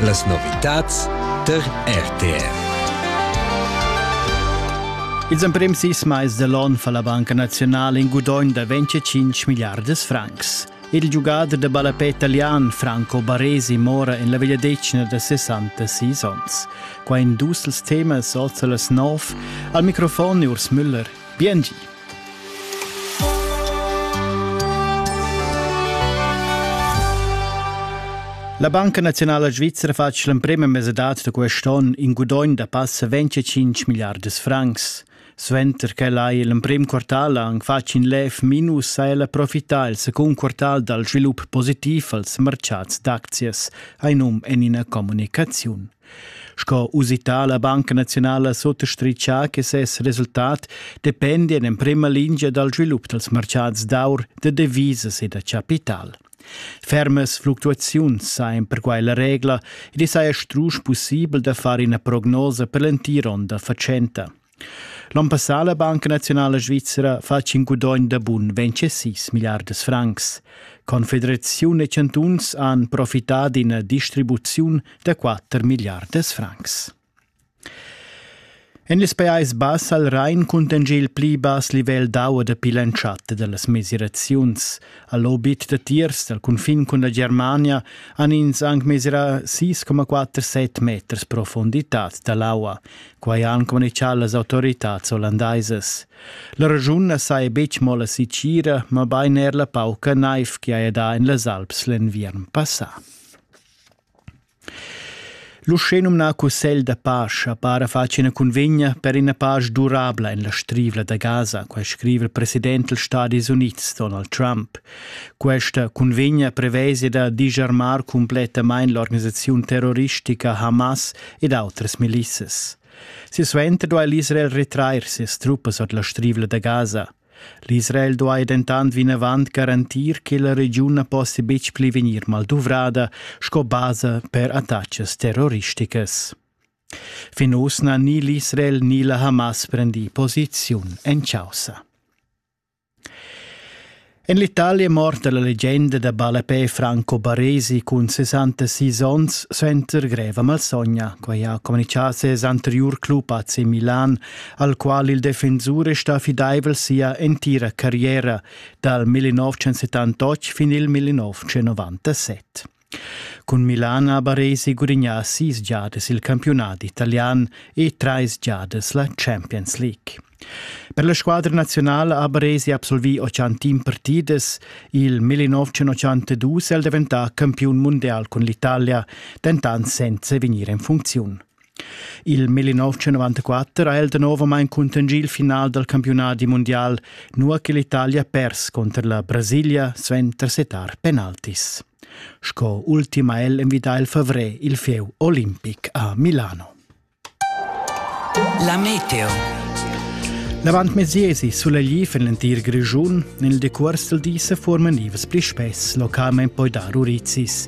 Las novitads tar RTR. Ils emprims sis mais dell'on fa la Banca Nazionale in gudogn da 25 miliardas francs. Il giugader da ballapè italian Franco Baresi mora en la vegliadetgna da 66 onns. Qua in dus els temas, also las nov. Al microfon è Urs Müller. Biengi. La Banca Nazionala Svizra fa l'emprema mesadad da quest onn in gudogn da passa 25 miliardas francs. Suenter che hai l'emprim quartal anc fatg in lev minus ha ella profità il secund quartal dal svilup positiv als mercads d'aczias, hai num en ina communicaziun. Sco usità la Banca naziunala suttastritga che ses resultat dependi en emprima lingia dal svilup dals martgads d'aur, da devisas e da capital. Fermas fluctuaziuns sajan perquai la regla ed i saja strusch pussibel da far ina prognosa per l'entir onn da fatschenta. L'on passà la Banca Naziunala Svizra fatg in gudogn da bun 26 milliardas francs. Confederaziun e chantuns han profità d'ina distribuziun da 4 milliardas francs. En les Pajais Bass al Rhein cuntegna il pli bass livel d'aua dapi l'entschatta da las mesiraziuns. Al obit da tiers dal cunfin cun la Germania han ins anc mesirà 6,47 meters profunditad da l'aua. Quai han communitgà las autoritads hollandaisas. La regiun na saja betg mo la sicira, mabain er la pauca naiv che haja dà en las Alps l'enviern passà. L'uschenumnà Cussegl da pace para fatg ina cunvegna per ina pace durabla en la strivla da Gaza, quai scriva il president dals Stadis Unids Donald Trump. Questa cunvegna prevesida disarmar cumplettamain l'organisaziun terroristica Hamas ed autras milissas. Silsuenter duai l'Israel retrair sias truppas ord la strivla da Gaza. L'Israel duai dentant vinavant garantir che la regiun na possia betg pli vegnir malduvrada sco basa per attacas terroristicas. Fin uss n'ha ni l'Israel ni la Hamas prendì posiziun en chaussa. En l'Italia è morta la legenda da ballapè Franco Baresi cun 66 onns suenter greva malsogna. Quai ha communitgà ses anteriur club AC Milan, al qual il defensur è stà fidaivel sia entira carriera, dal 1978 fin il 1997. Cun Milan ha Baresi gudignà sis giadas il campiunat italian e trais giadas la Champions League. Per la squadra nazionala ha Baresi absolvì 80 partidas, il 1982 è el daventà campiun mundial cun l'Italia, dentant senza vegnir en funcziun. Il 1994 ha el danovamein cuntanschì il final dal campiunadi mundial, nua che l'Italia pers cunter la Brasilia suenter setar penaltis. Sco ultim ha el envidà il favrer il fieu olimpic a Milano. La meteo. L'avantmesiesi sulegl en l'entir Grischun. Nel decuors del di se forman ivs pli spess localment poi dar urizis.